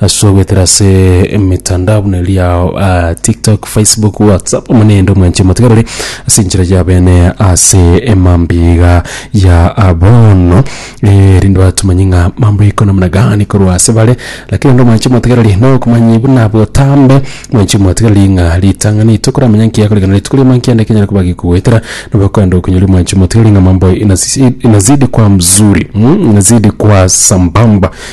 Ase ogoetera ase emetandao buna eria ah, TikTok, Facebook, WhatsApp, omonendo mwanche motigarore ase enchera ya bene ase emambiga ya abono eh, rinde batumanye ng'a mambo iko namna gani korwa ase bare lakini ndo mwanche motigarore no okomanya buna botambe mwanche motigarore ng'a ritang'ani tokoramanya nkiya korekana rituko riamo nkiya nde kenyara koba gekogoetera nabo okoenda okonyoria mwanche motigarore ng'a mambo inasi- inazidi kwa mzuri mm, inazidi kwa sambamba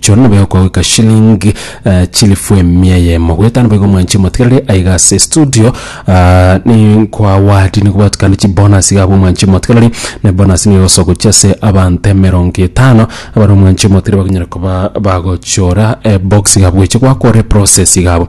Choro nobe okogoika shilling eh, chilifu emia yemo goeta nobe igo mwanche motigerere aiga ase studio ah, ni kwa wadi nigo batukane chibonus iga abwo mwanche motigerere ne bonus nigo igosoka gochia ase abanto emerongo etano abare omwanche motigerere bakonyara koba bagochora eh, box iga bweche gwakore process iga abwo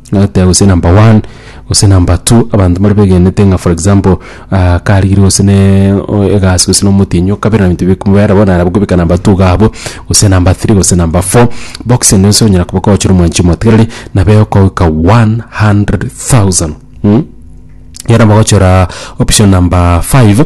Agateba gose number one, gose number two, abanto mbare begenete ng'a for example karigire gose na egasi gose na omotienyi okabera ebinto bikobera bono nabo okobeka number two iga abwo, gose number three gose number four, box ende yonsi onyara koba kwagochora omwanchi omotigareri nabo egokogoika one hundred thousand mh. Ekero bagochora option number five.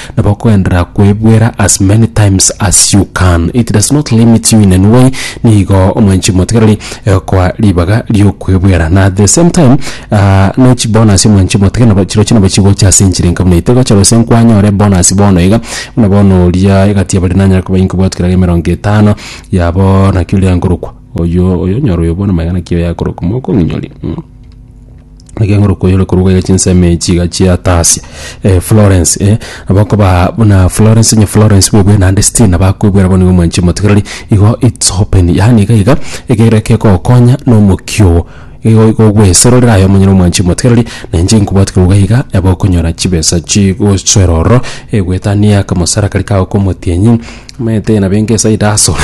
Nabo okogenderera kwebuera as many times as you can, it does not limit you in any way, nigo omwanchiri motigareri egokoa ribaga ri'okwebuera. Na at the same time, ah, ne chibonus omwanchiri motiga nabo chirochio nabo chigocha ase enchera enka buna eye. Tegocha gose nkwanyore bonus bono iga, buna bono oria egati ya baria nanyare koba inkobwati kerabe emerongo etano yabo naki oria nkorokwa, oyio, oyio onyore oyo bono magega naki oyo akorokwa, mokong'inyoria, mm. Egeng'oro koyore korwa ya chinsemo echi iga chiatasia eh, Florence eh, abakoba buna Florence nye Florence bwebwe naende still nabakoibwera bono iga omwanchi omotigereri igo it's open yaani iga iga ekero ekegokonya na omokio ogo igo igo ogwesororera aye omonyene omwanchi omotigereri na inche nkobwati korwa iga iga nabo okonyora chibesa chigosoera ororo egoetania akamosara karia kago ka omotienyi omanyete nabo engesaida asore.